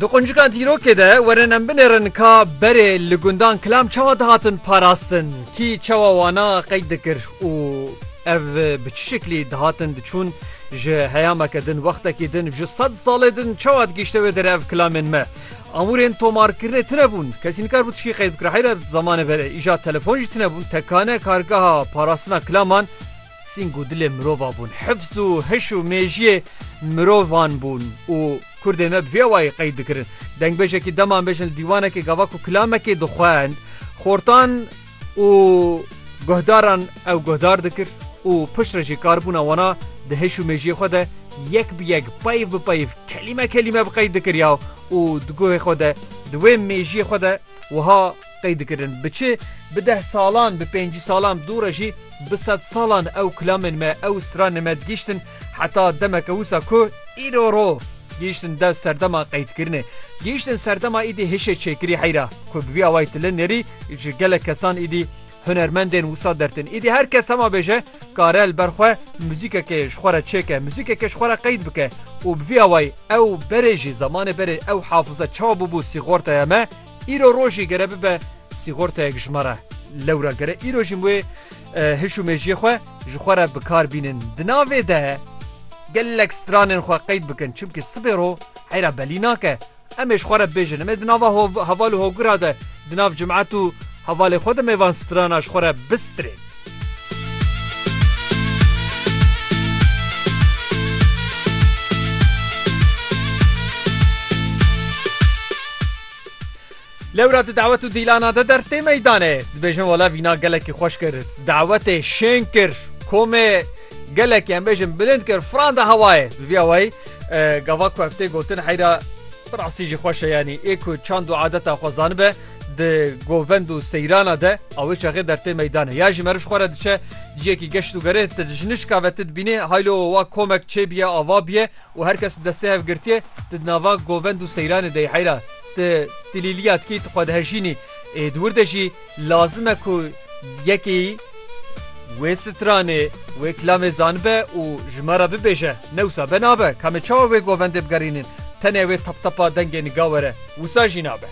Di quncikan dîrokê de werin em binêrin ka berê li gundan kilam çawa dihatin parastin, kî çawa wana qeyd dikir û ev bi çi şeklî dihatin diçûn ji heyameke din, wextekî din, ji sed salê din çawa digihîşte wê derev kilamên me. Amûrên tomarkirinê tune bûn, kesî nikar bû tişkî qeyd bikir heyra zamanê verê. Îja telefon jî tune bûn, tekane kargeha parastina kilaman, Sîng û dilê mirova bûn. Hifz û hiş û mêjiyê mirovan bûn û Kurdên me bi vê awayî qeyd dikirin. Dengbêjekî dema em bêjin li dîwanekê gava ku kilamekê dixwend, xortan û guhdaran ew guhdar dikir û pişt re jî karbûna wana di hiş û mêjiyê xwe de yek bi yek, peyv bi peyv, kelîme kelîme bi qeyd dikiriya û di guhê xwe de, di wê mêjiyê xwe de wiha Qey dikirin bi çi? Bi deh salan, bi pêncî salan, dû re jî bi sed salan ew kilamên me, ew stranên me digihîştin heta demeke wisa ku îro ro gihîştin dev serdema qeydikirinê. Gihîştin serdema îdî hişê çêkirî heyra ku bi vî awayî tu li nêrî ji gelek kesan îdî hunermendên wisa dertin. Îdî her kes hema bêje kare li ber xwe muzîkekê ji xwe re çêke, muzîkekê ji xwe re qeyd bike û bi vî awayî ew berê jî zamanê berê ew hafize çawa bûbû sîxortaya me, Îro rojî gere bibe sîxortayek ji me re. Lewra gere îro jî wê hiş û mejiyê xwe ji xwe re bikar bînin. Di navê de gelek stranên xwe qeyd bikin çimkî sibê ro heyra belî nake. Em ê ji xwe re bibêjin em ê di nava heval û hogura de di nav cimet û hevalê xwe de mêvan strana ji xwe re bistirên. Lewra di dawet û dîlana de dertê meydanê dibêjin wala vîna gelekî xweş kir dawetê şên kir komê gelekî em bêjin bilind kir fran de hewayê bi vî awayî gava ku ev tê gotin heyra birasî jî xweş e yanî ê ku çand û adeta xwe zanibe di govend û seyrana de awê çaxê dertê meydanê ya ji meriv xwe re diçe ciyekî geşt û gerê ti ji nişka ve ti dibînê haylo wa komek çêbiye ava biye û her kes destê hev girtiye ti di nava govend û seyranê dey heyra ti tilîliya dikî ti xwe dihejînî ê di wir de jî lazim e ku yekî wê stranê wê kilamê zanibe û ji me re bibêje newsa be nabe kamê çawa wê govendê bigerînin tenê wê taptapa dengê niga were wisa jî nabe.